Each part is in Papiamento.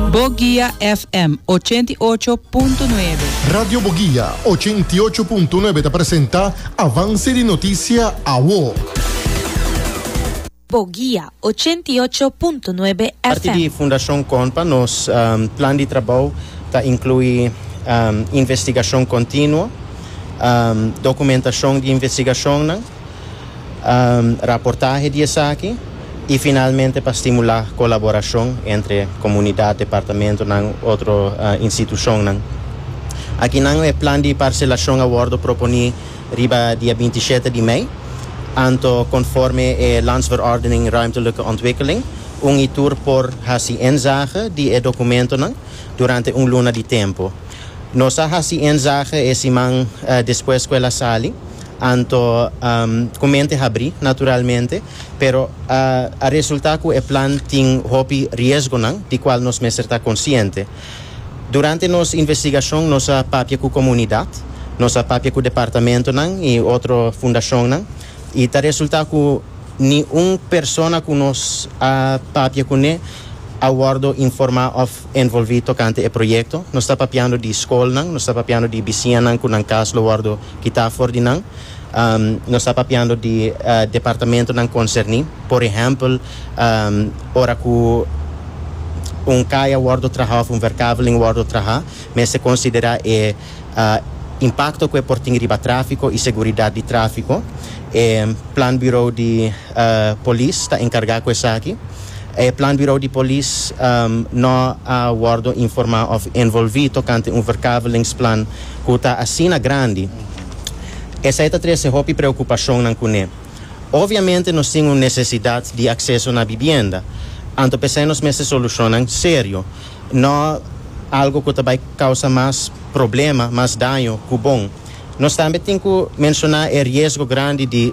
Boguia FM ochenta i ocho punto nuebe. Radio Boguia ochenta i ocho punto nuebe ta presenta Avance di Noticia Awo. Boguia ochenta i ocho punto nuebe FM. Parti di Fundacion Conpa nos plan di trabou ta inclui investigacion continuo, documentacion di investigacionnan, raportahe di esaki y finalmente pa stimula colaboracion entre comunidad, departamentonan, otro institucionnan. Akinan e plan di parcelacion a wordo proponi riba dia binti shete di mei, anto conforme e Landsverordening Ruimtelijke Ontwikkeling, un y tur por haci inzage di e documentonan durante un luna di tempo. Nos a haci inzage e siman despues cu el a sali. Anto ku mente habrí naturalmente, pero a resultá ku e plan tin hopi riesgonan di kual nos mester ta konsiente. Durante nos investigashon nos a papia ku komunidat, nos a papia ku departamentonan i otro fundashonnan i ta resultá ku ni un persona ku nos a papia kuné a wòrdu informá òf envolvi tokante e proyekto. Nos ta papiando di skolnan, nos ta papiando di bisiñanan ku nan kas lo wòrdu kitá for di nan. Nos ta papiando di departamentunan konserní. Por ehèmpel, ora ku un kaya wòrdu trahá òf un werkaveling wòrdu trahá, mester konsiderá e impakto ku e por tin riba tráfiko i seguridat di tráfiko. E Planburo di Polis ta enkargá ku esaki. E Plan Bureau di Polis no a wordo informa of envolvi tocante un verkavelingsplannen cu ta asina grandi. Esai ta trece hopi preocupacionnan cune. Obviamente nos tin un necesidad di acceso na bibienda, anto p'esai nos mester solucionnan serio, no algo cu ta bay causa mas problema, mas daño cu bon. Nos tambe tin cu menciona e riesgo grandi di.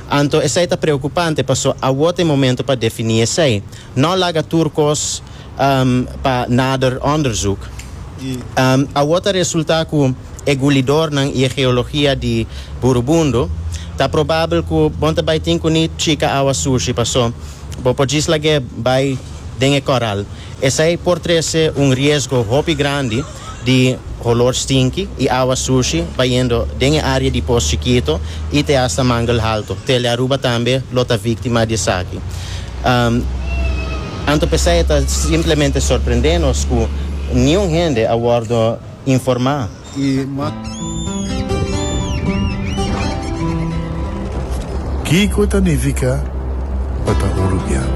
Anto esei ta preokupante paso awor ta e momento pa defini esei. No laga tur kos pa nader onderzoek. Awor ta resulta ku e gulidornan i e geologia di Burubundu ta probabel ku bon ta bai tin ku ni chika awa sushi paso bo por djis lag'é bai den e koral. Esei por trese un riesgo hopi grandi. di holor stinki y awa sushi bayendo den e area di Pos Chikito y te hasta Mangle Halto. Tele Aruba tambe lo ta victima di esaki. Anto pesey e ta simplemente sorprende nos cu niun hende a wordo informa. Kico ta nifica pa ta Urubiano?